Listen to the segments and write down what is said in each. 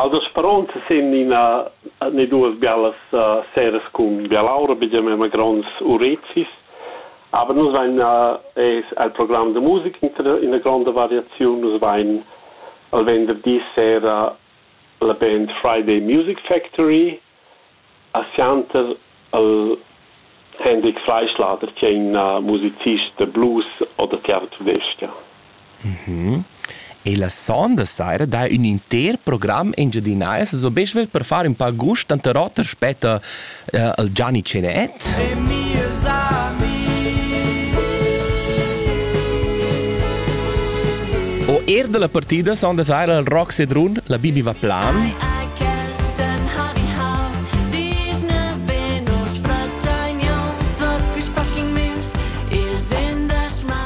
Els spronts sin ina ne duas bellas seras cun bialaura, bigiamema gronds urezis. Aber nus vain es al program da musica ina gronda variaziun. Nus vain al venderdi sera la band Friday Music Factory A sianter al Hendrik Fleischlader chi è ün musicist da blues o da tiartudescha. E la sonda saira dà ün inter program engiadinais es be svelt per far ün pa gust, tanter oter spetta uh, il Gianni Cenet. E mieus O er dalla partida sonda saira al Rock Sedrun, la Bibi va plan.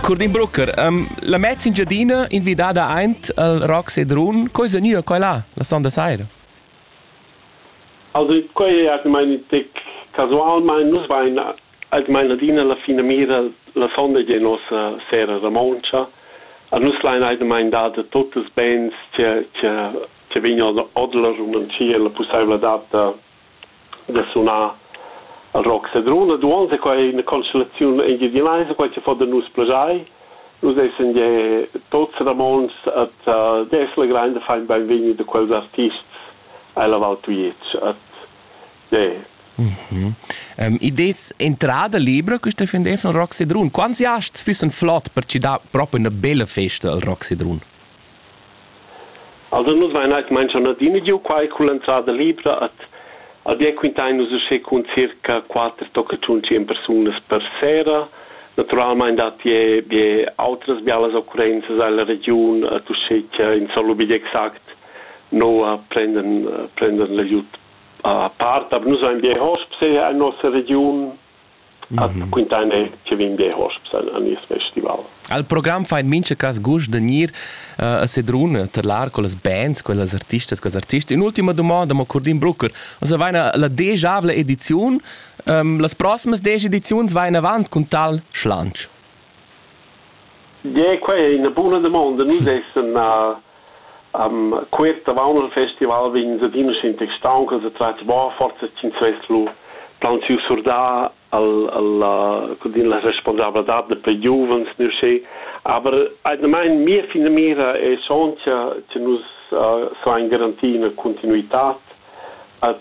Curdin Brucker, um, la mezza Engiadina invidada aint al Rock Sedrun, coi sa gnüa coi là, la sonda saira? Also, quai è almain in tec casualmain, nus vain almain adina la finamira la sonda di nossa sera romontscha. A nus lain almain dada tuttes bens che, che che vegn ord la Rumantschia la pussaivladad da, da sunar rock sedrun. Ed uonn è quai ina constellaziun engiadinaisa, quai che fa da nus plaschair. Nus essan ja tuts Ramontschs et uh, das la grande fein beinvegni de quels artists ella Val Tujetsch. Et yeah. Mhm. Um, idets entrada libra questa fin defn Rock Sedrun. Quants hast füssen flott per ci da proprio una bella festa al Rock Sedrun? Alura nus vain eir cumainzchà adina giò quai culla entrada libra ad ad ir a quintain nus uschè cun circa quatter tocca tschun tschien persunas per sera. Natüralmaing datti eir be autras bialas occurrenzas illa regiun ad uschè cha insomma be exact noua prenden prenden l'aiut a part, aber nus vain be a Hosps eir in nossa regiun. At quintaine che vin bia hosps a nies festival. Al program fa in mincha cas gust da gnir uh, a sedrun terlar con las bands, con las artistas, con artists. In ultima domanda, mo Curdin Brucker, also vaina la degiavla ediziun, um, las prossimas degi ediziuns vain avant con tal schlanch. Gie, quei ei ina buna damonda. Nus essan cuort avon il festival vegns adina schentec stauncas e tratgs buca forsa ch'ins vess lu plaunsiu surdà la responsabladad da plai giuvens ne uschè. Aber atgnamain mia finamira è schontia che nus sain garantir ina continuitad ad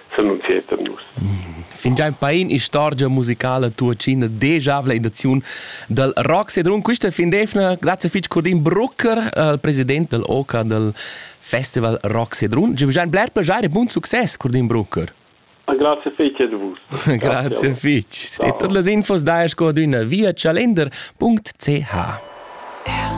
senunzieta nus. Fingiain pain istorgia musicala tuocina dejavla in daziun dal rock sedrun quista fin d'eivna grazie fich Curdin Brucker al president dal OCA dal Festival Rock Sedrun. Je vous bler plaisir e buon success Curdin Brucker. Grazie fece de vus. Grazie fich. Ste tot las infos da sco d'üna via chalender.ch.